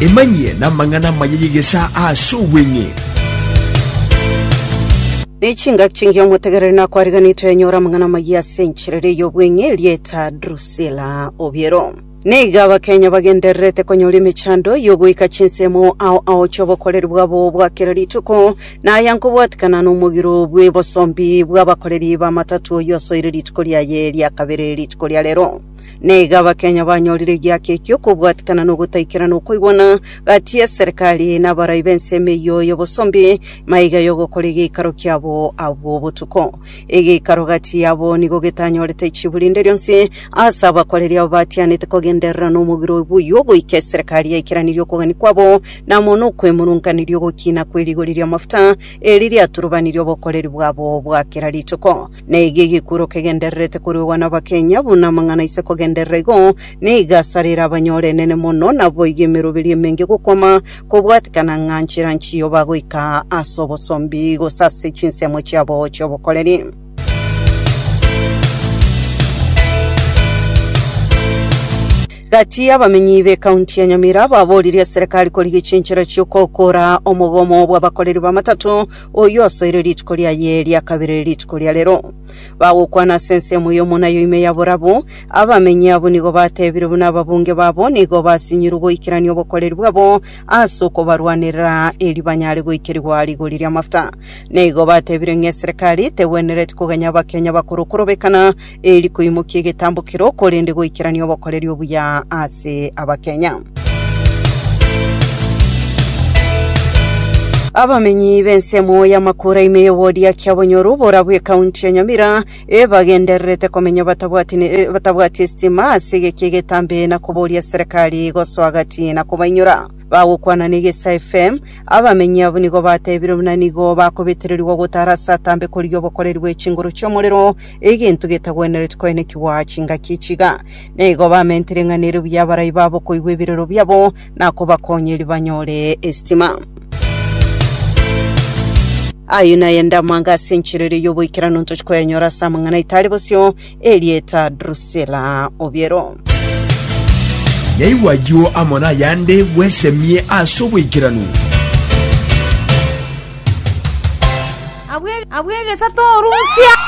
Emanyie namang'ana amaya y'egesaa aase obweng'e. N'echingaki chingiya omotegereri nakwariganetwe yanyora amang'ana amayia ase enchera eria y'obweng'e erieta Drusila obiero. Nigo Abakenya bagendererete konyora emechando y'ogoika chinsemo ao aochia obokoreri bwabo bwa kera rituko, na aya nkobwatikana nomogiro bw'ebosombi bw'abakoreri b'amatatu oyio asoire rituko riaye ria kabere rituko ria rero. na iga Abakenya banyorire egiakia ekio okobwatikana na ogotaikerana okoigwana gati y'eserekari na abarai b'ensemo eyio y'obosombi maiga y'ogokora egeikaro kiabo abwo botuko. Egeikaro gati yabo nigo getanyorete chibu rinde rionsi ase abakoreri abo batianete kogenderera nomogiro obo oyio goika eserekari yaikeranirie okogania kwabo na amo nokwemurunganiria ogokina kwe rigori ri'amafuta eri riaturubanirie obokoreri bwabo bwa kera rituko. Naiga egekuro kegendererete koruegwa n'abakenya, buna amang'ana aise kogenderera igo, nigo asarire abanyore enene mono, naboigo emeroberi emenge gokwama, kobwatekana ng'a nchera nchiyo bagoika ase obosombi, gose ase chinsemo chiabo chi'obokoreri. Gati y'abamenyi b'ekaunti ya Nyamira baboririe serikali korigia chinchera chi'okokoora omogomo bw'abakoreri b'amatato, oyio asoire rituko riaye ria kabere rituko ria rero. Bagokwana ase ensemo eyomo nayo ime ya borabu, abamenyi abwo nigo bateebire buna ababunge babo nigo basinyirwe goikerania obokoreri bwabo ase okobarwanerera eri banyare goikerigwa rigori ri'amafuta. Nigo bateebire ng'a eserekari tegwenereti koganya Abakenya bakorokorobekana eri koimokia egetambokero korende goikerania obokoreri obuya ase Abakenya. Abamenyi b'ensemo y'amakura ime y'ewodi ya Kiabonyoru bora bw'ekaunti ya Nyamira ebagendererete komenya batabwati ne- eh, batabwati esitima ase egeki egetambe na koboria serikali gosoa gati na kobainyora. Bagokwana na Egesa FM, abamenyi abwo nigo batebire buna nigo bakobetererigwa gotara ase atambe korigia obokoreri bwe chinguru chi'omorero Egento getagwenereti koenekigwa chingaki echiga, na igo bamentere ing'aneire buya abarai babo koigwa ebirero biabo, na kobakonyeria banyore esitima. Ayio naye ande amanga ase enchera eria y'oboikeranu ntoche koyanyora ase amang'ana aito are bosio, Erieta Drusila Obiero. Yaigwa ayio amo nayande, bwesemie ase oboikeranu. Abw'egesato orusia.